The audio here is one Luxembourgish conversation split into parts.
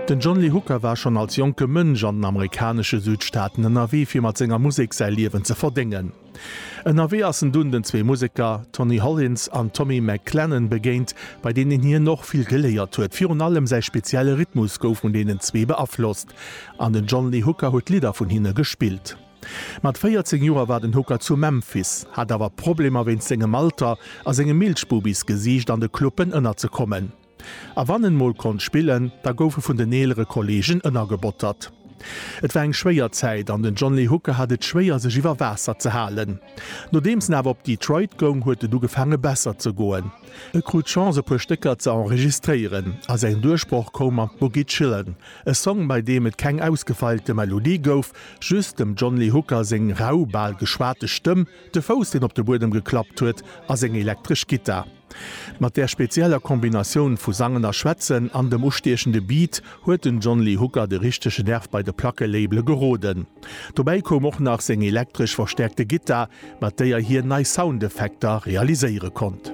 Den John Lee Hooker war schonn als jonke Mënsch an den amerikanesche Südstaaten ënnerwee fir mat senger Musek säi Liewen ze verdéngen. Ënnerwee ass en dunn den zwee Museker Tony Hollins an Tommy McClennan begéint, bei deenen hien och vill geléiert huet. Virun allem säi spezielle Rhythmus gouf vun deenen zwee beaflosst an den John Lee Hooker huet Lidder vun hinne gespillt. Mat 14 Joer war den Hooker zu Memphis, hat awer Problemer wéinst sengem Alter a sengem Milchbubis-Gesiicht an de Cluppen ënnerzekommen. A wann en mol konnt spillen, da gouf e vun den eelere Kolleegen ënnergebottert. Et war eng schwéier Zäit an den John Lee Hooker hat et schwéier, sech iwwer Waasser ze halen. Nodeems en awer op Detroit goung, huet et ugefaange besser ze goen. E krut d'Chance e puer Stécker ze enregistréieren a säin Duerchbroch koum mat Boogie Chillun, e Song bei deem et keng ausgefeilte Melodie gouf, just dem John Lee Hooker seng rau, bal geschwate Stëmm, de Fouss deen op de Buedem geklappt huet a seng elektresch Gittar. Mat där spezieller Kombinatioun vu Sangen a Schwätzen an dem ustiechende Beat huet den John Lee Hooker de richtege Nerv bei de Plackelabele geroden. Dobäi koum och nach seng elektresch verstäerkte Gittar, mat déier hien nei Soundeffekter realiséiere konnt.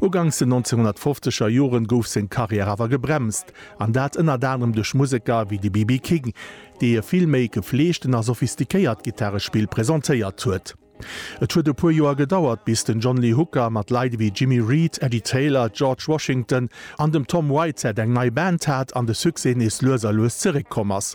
Uganks den 1950 er Joren gouf seng Karriär awer gebremst, an dat ënnert anerem duerch Museker wéi de BB King, dee e vill méi gefleegten a sophistiquéiert Gittarespill presentéiert huet. Et huet e puer Joer gedauert bis den John Lee Hooker mat Leit wéi Jimmy Reed, Eddie Taylor, George Washington an dem Tom Whitehead eng nei Band hat an de Succès nees lues a lues zeréck komm ass.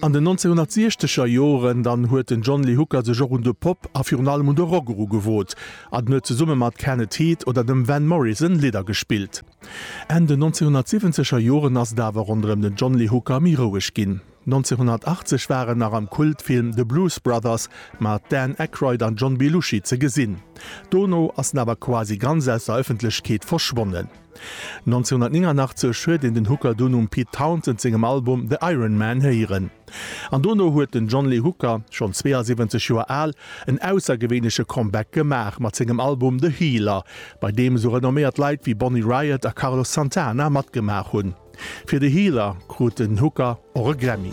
An den 1960er Joren dann huet den John Lee Hooker sech och un de Pop a virun allem un de Rock erugewot an huet zesumme mat Kenneth Heath oder dem Van Morrison Lidder gespillt. Enn den 1970er Joren ass et awer ronderëm den John Lee Hooker méi roueg ginn. 1980 war en nach am Kultfilm The Blues Brothers mat Dan Aykroyd an John Belushi ze gesinn. Dono ass en awer quasi ganz aus der Ëffentlechkeet verschwonnen. 1989 huet een den Hooker dunn um Pete Townshend sengem Album The Iron Man héieren. An dono huet den John Lee Hooker, schonn 72 Joer al, en aussergewéinleche Comeback gemaach mat sengem Album The Healer, bei deem esou renomméiert Leit wéi Bonnie Raitt a Carlos Santana matgemaach hunn. Fir The Healer krut den Hooker och e Grammy.